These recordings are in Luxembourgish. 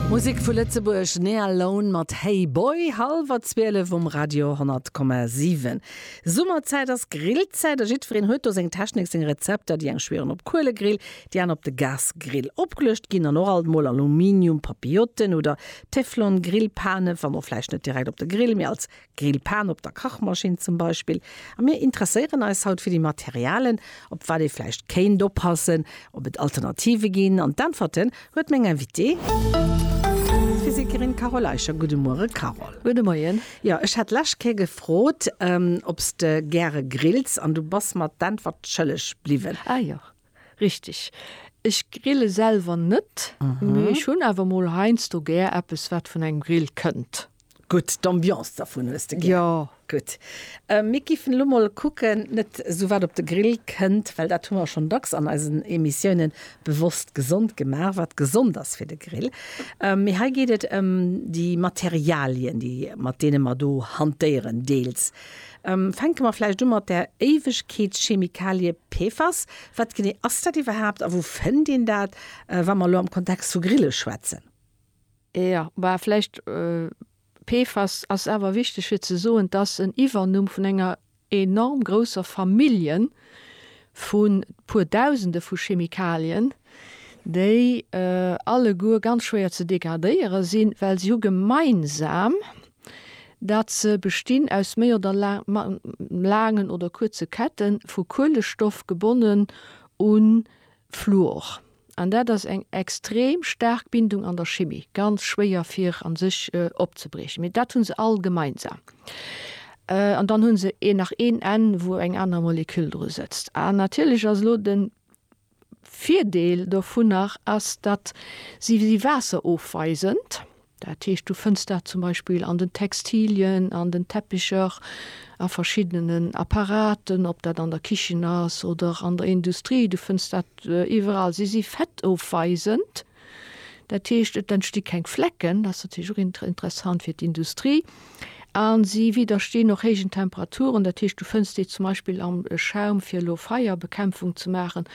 Musek vu Lëtzebuerg, Nea Lone mat Hey Boy, hallwer 12 um Radio 100,7. Summerzäit ass Grillzäit a jiddwereen huet do seng Technik, seng Rezepter. Déi eng schwieren op Kuelegrill, déi aner op de Gasgrill. Opgeluecht ginn dann och alt mol Aluminium-Papillotten oder Teflon-Grillpanen, wann och vläicht net direkt op de Grill, mee als Grillpan op der Kachmaschinn zum Beispill. A mir interesséieren eis haut fir déi Materialen, op wat ee vläicht kéint oppassen, ob et Alternative ginn. An d'Äntwerte huet meng Invitée. D'Physikerin Carole Eicher. Gudde Muere Carole. Gudde Moien. Jo, ech hat d'lescht Kéier gefrot, ob s de gäre grills, an du bass mer d'Äntwert schëlleg bliwwen. Ah jo. Richteg. Ech grille selwer net, mee ech hunn awer mol heiansdo gär eppes, wat vun engem Grill kënnt. Gutt, d'Ambiance dervun hues de gär. Jo. Gutt. Mir géifen elo mol kucken, net esou wat op de Grill kënnt, well dat hu mer schonn dacks an eisen Emissiounen, bewosst gesond gemaach, wat gesond ass fir de Grill. Mee hei geet et ëm déi Materialien, déi, mat deene mer do hantéieren, deels. Fänke mer vläicht u mat der Éiwegkeetschemikalie PFAS. Wat genee ass dat iwwerhaapt a wou fënnt een dat, wa mer elo am Kontext vu Grille schwätzen? Jo, bah, vläicht. PFAS ass awer wichteg fir ze soen, et ass en Iwwernumm vun enger enorm grousser Familljen vu puer Dausende vu Chemikalien, déi alleguer ganz schwéier ze degradéiere sinn, well se hu gemeinsam, datt se bestinn aus méi oder laangen oder kuerze Kette vu Kuelestoff gebonnen u Fluor. An dat ass eng extrem staark Bindung an der Chimie, ganz schwéier fir a sech opzebriechen. Mee dat hu se all gemeinsam. An dann hu se een nach een Enn, wou eng aner Moleküll dru sëtzt. An natierlech ass elo de Virdeel dovunner ass, datt si si waasserofweisend, dat heescht du fënns dat zum Beispill an den Textilien, an den Teppicher, a verschiddenen Apparaten, ob dat an der Kichen ass oder an der Industrie, du fënns dat iwwerall. Si si fettofweisend. Dat heescht, et entsti keng Flecken, dat ass natierlech och interessant fir d'Industrie. A si widdersteen och héijen Temperaturen, dat heescht, du fënns déi zum Beispill am Schaum, fir elo Feierbekämpfung ze maachen,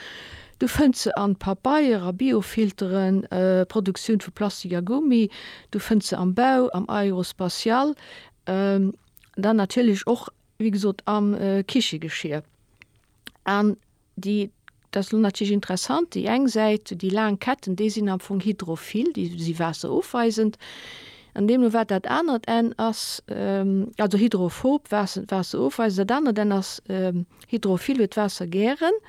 du fënns se an Papeier, a Biofilteren, Produktioun vu Plastik a Gummi, du fënns se am Bau, am Aérospatial, dann natierlech och, wéi gesot, am Kichegeschier. An Déi, dat ass elo natierlech interessant, déi eng Säit, déi laang Ketten, déi sinn am Fong hydrophil, déi si waasserofweisend, an deemno wat dat anert Enn ass, also hydrophob, waasserofweisend, dat anert Enn ass hydrophil, huet d'Waasser gären.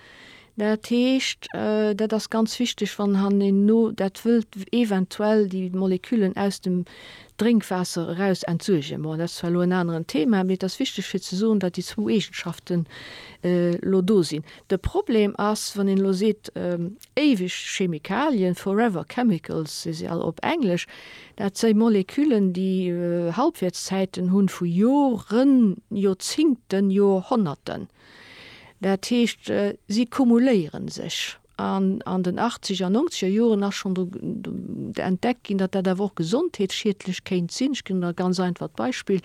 Dat heescht, dat ass ganz wichteg, wann hanneno dat wëllt eventuell déi Moleküllen aus dem Drénkwaasser eraus entsuergen. Bon, dat ass zwar elo en aneren Thema, mee et ass wichteg fir ze soen, datt déi zwou Eegenschaften elo do sinn. De Problem ass, wann een elo seet, éiweg Chemikalien, forever chemicals, si se all op Englesch, dat si Moleküllen, déi Halbwäertszäiten hunn vu Joren, Joerzingten, Joerhonnerten. Dat heescht, si kumuléiere sech. An an den Achtzeger an Nongzeger Joren ass schonn do entdeckt ginn, datt dat awer och gesondheetsschiedlech kéint sinn. Ech ginn der e ganz einfacht Beispill,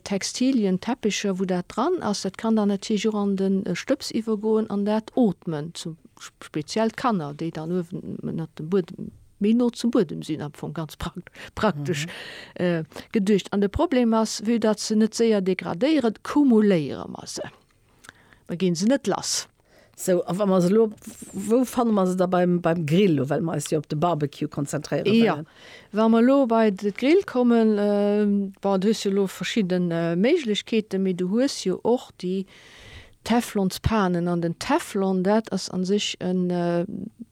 Textilien, Teppecher, wou dat dran ass, dat kann dann natierlech och an de Stëbs iwwergoen an dat ootmen. Speziell d'Kanner, déi dann uewenënnert dem Buedem, méi no zum Buedem sinn am Fong, ganz praktesch geduecht. An de Problem ass, vue datt se net séier degradéieren, kumuléiere mer se. da ginn se net lass. Sou, a wa mer se elo, wou fanne mer se da beim Grill elo, well mer eis jo op de Barbecue konzentréiere wëllen? Jo, wa mer elo bei de Grill kommen, bon, du hues jo elo verschidden Méiglechkeeten, mee du hues jo och déi Teflonspanen. An den Teflon, dat ass a sech en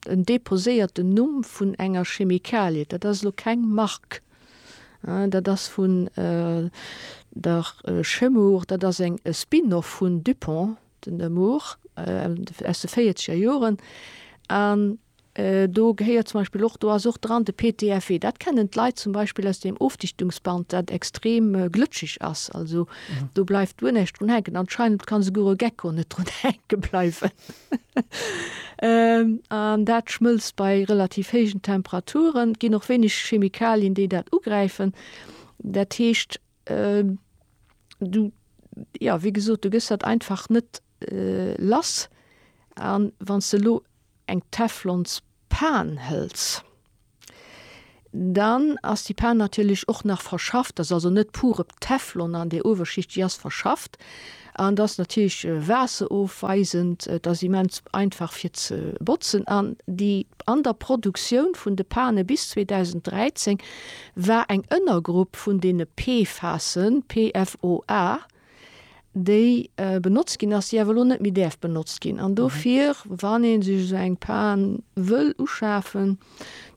deposéierten Numm vun enger Chemikalie, dat ass elo keng Mark. Dat ass vun der Chemours, dat ass eng e Spin-off vun Dupont, den Nemours aus de véierzeger Joren. An do gehéiert zum Beispill och, do ass och dran de PTFE. Dat kennen d'Leit zum Beispill aus deem Ofdichtungsband, dat extrem glëtscheg ass. Also do bleift guer näischt drun hänken. Anscheinend ka souguer e Gecko net drun hänke bleiwen. An dat schmëlzt bei relativ héijen Temperaturen. Et ginn och wéineg Chemikalien, déi dat ugräifen. Dat heescht, du, ja, wéi gesot, du gëss dat einfach net lass. A wann s de elo eng Teflonspan hëls, Dann ass déi Pan natierlech och nach verschafft, ass also net pur op Teflon an der Uewerschicht, déi ass verschafft an ass natierlech waasserofweisend. Et ass immens einfach fir ze botzen an déi an der Produktioun vun de Pane bis 2013 war eng Ënnergrupp vun deene PFASen, PFOA, déi benotzt ginn ass, déi awer elo net méi däerf benotzt ginn. An dofir, wann ee sech esou eng Pan wëll uschafen,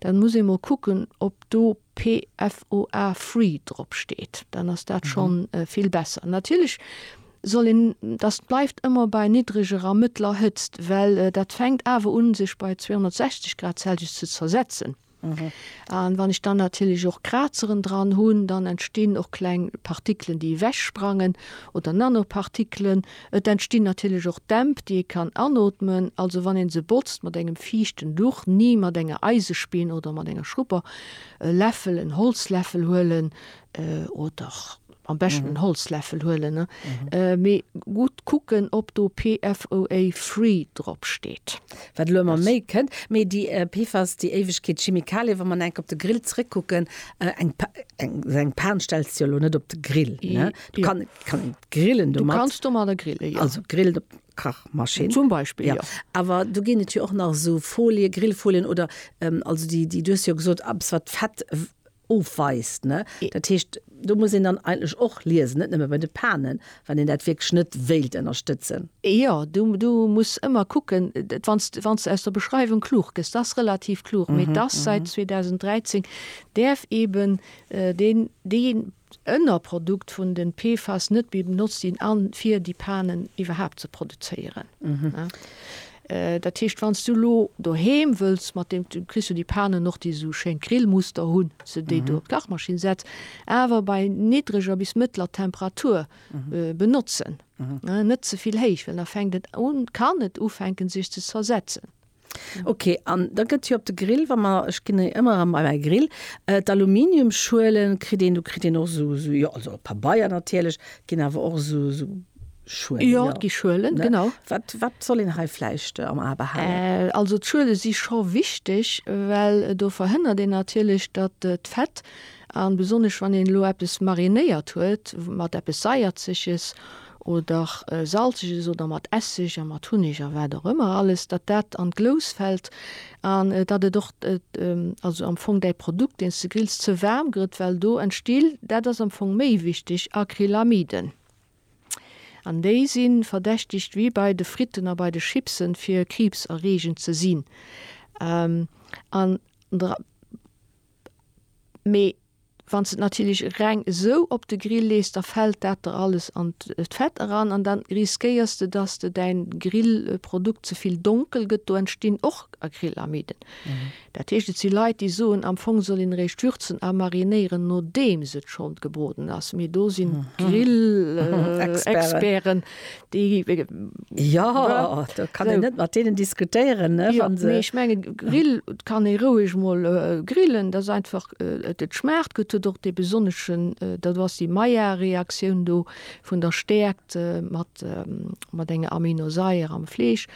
dann muss ee mol kucken, ob do PFOA free drop steet. Dann ass dat scho vill besser. Natierlech soll een, dat bleift ëmmer bei niddreger a mëttler Hëtzt, well dat fänkt awer un, sech bei 260 Grad Celsius ze zersetzen. An wann ech dann natierlech och Krazeren dran hunn, dann entstinn och kleng Partikelen déi ewech sprangen oder Nanopartikelen. Et entstinn natierlech och Dämp déi ee kann anootmen. Also wann een se botzt mat engem fiichten Duch, ni mat enger Eisespinn oder mat enger Schrupper, e Läffel, en Holzläffel huelen oder Am beschten en Holzläffel huelen, mee gutt kucken ob do PFOA free drop steet. Wat elo emmer méi kënnt, mee déi PFAS, déi Éiwegkeet Chemikalie, wa mer enk op de Grill zréck kucken, eng esou eng Pan stells de jo elo net op de Grill, ne? Du kann kann een grillen domat. Du kanns domadder grillen, jo. Also grillen op Kachmaschinn. Zum Beispill, jo. Awer do ginn et jo och nach esou Folie, Grillfolien oder also déi déi du hues jo gesot, eppes wat Fett ofweist. Ne? Dat heescht, do muss een dann eigentlech och liesen, net nëmme bei de Panen, wann een dat wierklech net wéilt ënnerstëtzen. Jo, du, du muss ëmmer kucken, wann s, wann s aus der Beschreiwung klug gëss, dass relativ klug, mee dass säit 2013 däerf eeben deen, déi Ënnerprodukt vun de PFAS net méi benotzt ginn, a fir déi Panen iwwerhaapt ze produzéieren. Dat heescht wanns du lo doheem wëlls mat dem, du kriss jo déi Panen och déi esou schéin Grillmuster hunn, dass de déi do op d'Kachmaschinn setz, awer bei niddreger bis mëttler Temperatur benotzen, net ze vill héich, well da fänkt et un, kann et ufänken sech ze zersetzen. Ok, an da gëtt jo op de Grill, wa mer, ech ginn e ëmmer bei mäi Grill, d'Aluminiumschuelen kritt een, do kritt een och esou, jo also Pabeier natierlech, et ginn awer och esou. Schuelen. Jo, et gi Schuelen, genau. Wat soll een hei vläicht am A behalen? Also d'Schuele si scho wichteg, well do verhënnert een natierlech, datt d'Fett, a besonnesch wann een elo eppes marinéiert huet mat eppes Saierzeges oder Salzeges oder mat Esseg a mat Hunneg a wat och ëmmer alles, datt dat an d'Glous fält an datt et och also am Fong däi Produkt, deen s de grills, ze waarm gëtt, well do entsti, dat ass am Fong méi wichteg, Acrylamiden. An déi si verdächtegt, wéi bei de Fritten a bei de Chipsen, fir kriibserreegend ze sinn. An dra. Mee wann s de et natierlech reng esou op de Grill lees, da fält dat der alles an d'Fett eran an da riskéiers de, dass de däin Grillprodukt ze vill donkel gëtt. Do entstinn och Acrylamiden. Dat heescht, et si Leit, déi soen, am Fong soll een eréischt würzen a marinéieren, nodeems et schonn gebroden ass. Mee do sinn d'Grillexperten, déi. Jo, do kann een net mat deenen diskutéieren, ne, wa se. Mee ech mengen, Grill kann ee roueg mol grillen. Dat ass einfach, et schmaacht gutt, huet och dee besonneschen, dat ass déi Maillard-Reaktioun do vun der Stäerkt mat enger Aminosaier am Fleesch.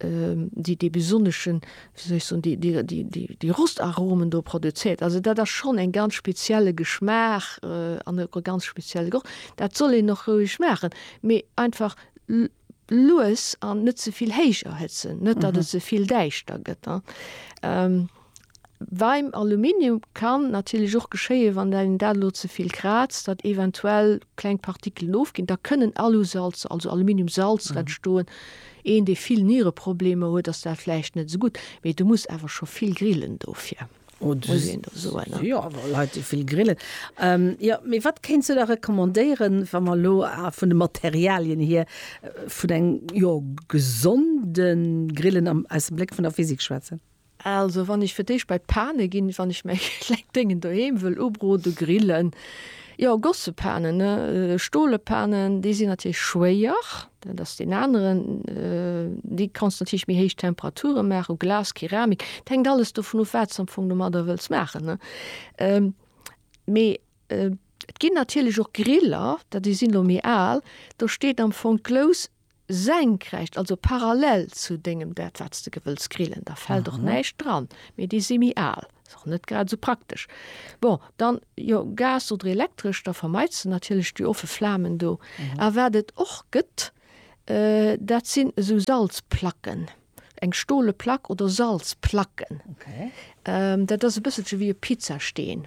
déi dee besonneschen, wéi soll ech soen, déi, déi, déi, déi, déi Rostaromen do produzéiert. Also dat ass schonn en ganz spezielle Geschmaach an e ganz spezielle Geroch. Dat soll een och roueg maachen, mee einfach lues an net ze vill héich erhëtzen, net datt et ze vill däischter gëtt. Beim Aluminium kann natierlech och geschéien, wann een dat elo ze vill kraazt, datt eventuell kleng Partikelen ofginn. Da kënnen Alusalzer, also Aluminiumsalzer entstoen. Een, dee vill Niereproblemer huet, ass dat vläicht net esou gutt. Mee du muss awer scho vill grillen dofir, muss een der soen. Jo, awer Leit, déi vill grillen. Jo, mee wat kéints du da recommandéieren, wa mer elo vun de Materialien hier vun engem, jo, gesonde Grillen aus dem Bléck vun der Physik schwätzen? Also wann ech fir d'éischt bei d'Pane ginn, wann ech mäi klengt Déngen doheem wëll ubroden, grillen, jo Gossepanen, ne, stole Panen, déi sinn natierlech schwéier, dat ass deen aneren, déi kanns natierlech méi héich Temperature maachen, u Glas, Keramik, et hänkt alles dovun of, wat s de am Fong domadder wëlls maachen, ne. Mee et ginn natierlech och Griller, dat déi sinn elo méi al, do steet am Fong d'Glous senkrecht, also parallel zu dengem dat wat s de gewëlls grillen, da fält och näischt dran, mee déi si méi al, ass och net grad esou praktesch. Bon, dann jo Gas oder elektresch, da vermeits de natierlech déi offe Flamen do. A wat et och gëtt, dat sinn esou Salzplacken, eng stole Plack oder Salzplacken, dat ass e bësselche wéi e Pizzasteen.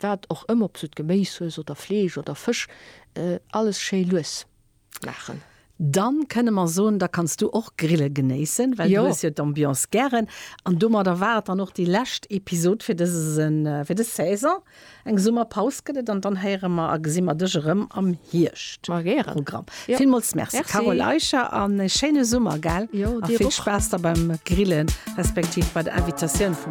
Wat och ëmmer, ob s du d'Geméis hues oder Fleesch oder Fësch, alles schéi lues maachen. Dann kënne mer soen, da kanns du och Grille genéissen, well du hues jo d'Ambiance gären. An domadder war et dann och déi lescht Episod fir dëse, fir dës Saison. Eng Summerpaus gëtt et an dann héiere mer a gesi mer dech erëm am Hierscht. Ma gären. Programm. Villmools Merci Carole Eicher an ee schéine Summer, gell? Jo, dir och. A vill Spaass da beim Grillen, respektiv bei der Invitatioun vum.